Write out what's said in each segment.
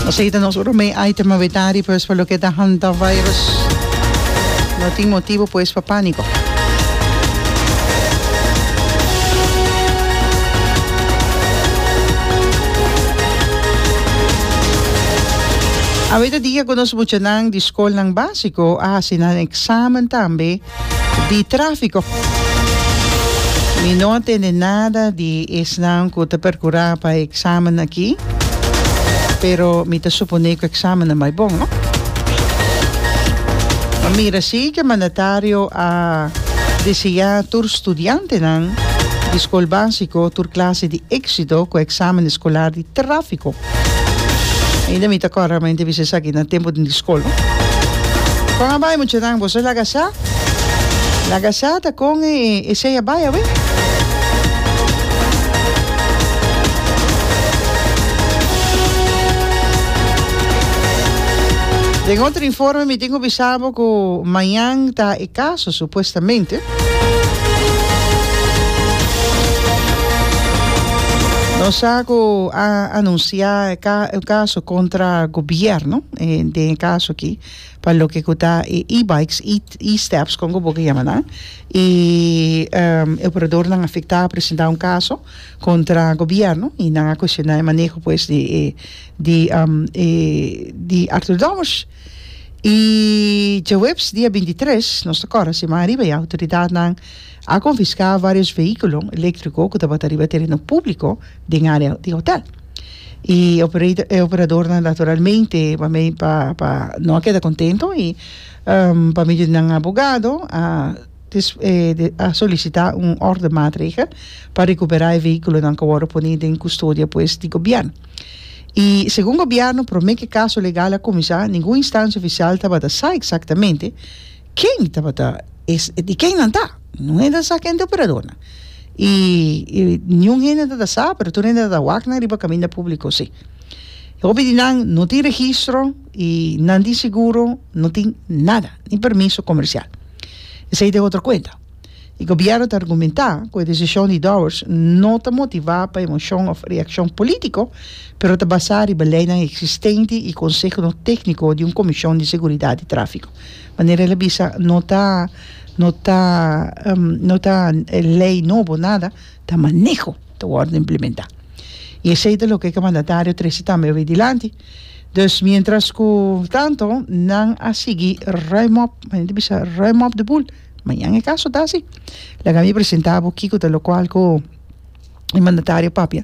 Nos a hita nos oro mei item a wetari pues pa loke ta hantavirus no tin motibo pues pa panico. Aweta dia cu nos muchanan di scolnan basico a hasi nan examen tambe. di tráfiko. Mi no a tende nada di esnan ku ta perkurá pa e eksamen aki, pero mi ta suponé ku e eksamen a bai bon, no? Mi mira sí ku e mandatario a deseá tur studiantenan di skol básiko tur klase di éksito ku e eksamen eskolar di tráfiko. Ainda mi ta corda mante bisa esaki na tempo den di school no. Con a bai muchanan boso a laga sa laga sa ta con e e sey a bai awe. Den otro informe mi tin cu bisa bo cu mañan ta e. Caso, supuestamente. Nos sa cu a anuncia e ca e caso contra gobierno eh, den e caso aquí pa loke cu ta e e-bikes, e e-steps con cu boca yama nan y em, e operadornan afecta a presenta un caso contra gobierno y nan a cuestiona e maneho pues di e di em di Arthur Domus. I djaweps dia binti tres, nos ta kòrda siman ariba ya, outoridatnan a konfiská vários veíkulo eléktriko ku tabata riba tereno públiko den área di hotèl. I operator e operadornan naturalmente pa me pa pa no a keda kontento i pa medio di nan abogado a a solisitá un órdenmaatregel pa rekuperá e veíkulonan ku a wòrdu pone den kustodia pues di gobièrnu. I segun gobièrnu promé ke kaso legal a kuminsá ningun instansia ofisial tabata sa eksaktamente ken tabata e di ken nan ta ningun hende ta sa ken ta e operadornan i ningun hende no ta sa pero tur hende tabata wak nan riba kaminda públiko si hopi di nan no tin registro i nan tin seguro no tin nada ni permiso komersial esei ta e otro kuenta. E gobierno ta argumenta cu e decision di Dowers no ta motiva pa emocion of reaccion politico, pero ta basa riba leinan existente y consehonan tecnico di un comision di seguridad di trafico. Manera el a bisa no ta no ta no ta ley nobo nada, ta maneho ta wordo implementa. Y esey ta loke cu e mandatario trece tambe a bay dilanti. Dus mientras cu tanto nan a sigui ruim op, manera ta bisa ruim op de boel. Mañan e kaso ta si. Laga mi presentá bo kiko ta lokual ku e mandatario papia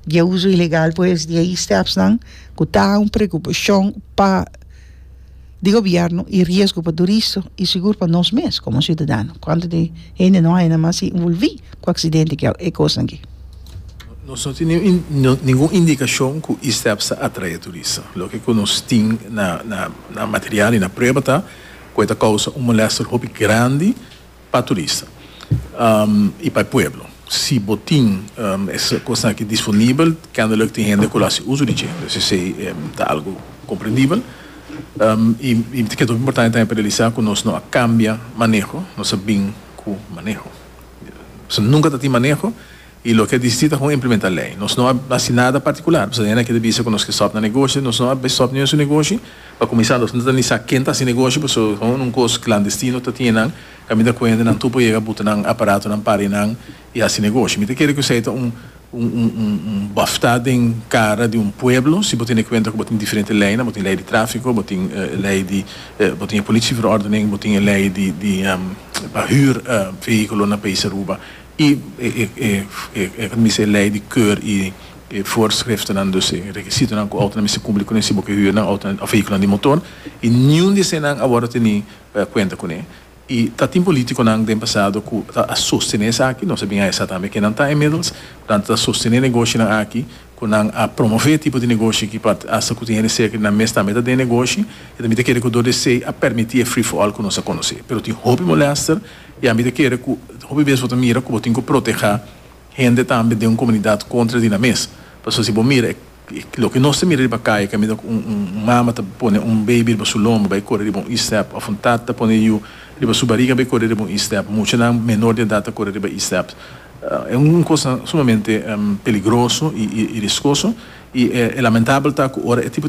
di e uso ilegal pues di e istepsnan ku ta un preokupashon pa di gobièrnu i riesgo pa turistu i sigur pa nos mes komo siudadano. Kuantu di hende no a henda mas involví ku aksidente ku e kosnan aki. Nos no tin ningun indikashon ku isteps ta atraé turistu. Loke ku nos tin na material i na prueba ta. cu e ta causa un molester hopi grandi pa turista y pa e pueblo. Si bo tin e cosnan aki disponibel, kennelijk tin hende cu lo haci uso di dje. Pues esey ta algo comprendibel. Y mi ta keda hopi importante tambe pa realisa cu nos no a cambia maneho, nos a bin cu maneho. Pasobra nunca ta tin maneho. I loke a disiti ta kon implementa lei. Nos no a hasi nada partikular, pasobra hendakier ta bisa ku nos ke stòp na negoshi, nos no a stòp niun su negoshi. Pa kuminsá nos no ta ni sa ken ta hasi negoshi, pasobra kon un kos klandestino ta tine nan, kan mi ta kuenta nan tur por yega buta nan aparatonan, pari nan i hasi negoshi. Mi ta kere ku esei ta un un bòftá den kara di un pueblo, si bo tin e kuenta ku bo tin diferente leinan, bo tin lei di tráfiko, bo tin lei di bo tin e polisiaverordening, bo tin e lei di di pa hür vehíkulo na País Aruba. I e ta mester lei di keur i e voorschriftennan, dus e rekisitonan ku outonan mester kumpli kuné si bo ke hür nan outonan òf vehíkulonan di motor, i niun di eseinan a wòrdu teni kuenta kuné. I ta tin polítikonan den pasado ku ta a sostené esaki, nos a bin haya sa tambe kenan ta inmiddels, ku nan ta sostené negoshinan aki, ku nan a promové e tipo di negoshi aki pa hasta ku tin hende serka di nan mes tambe ta den negoshi, e ta mester kere ku dor di esei a permití e free for all ku nos a konosé. Pero tin hopi molèster. I ami ta kere ku hopi bes bo ta mira ku bo tin ku protehá hende tambe den un komunidat kontra di nan mes. Pasobra si bo mira e loke nos ta mira riba kaya ku a mira ku un mama ta pone un beibi riba su lomba bai kore riba un E-step òf un tat ta pone yu riba su bariga bai kore riba un E-step. Muchanan menor di edat ta kore riba E-step. E un kos sumamente peligroso i riskoso i e lamentabel ta ku ora e tipo di.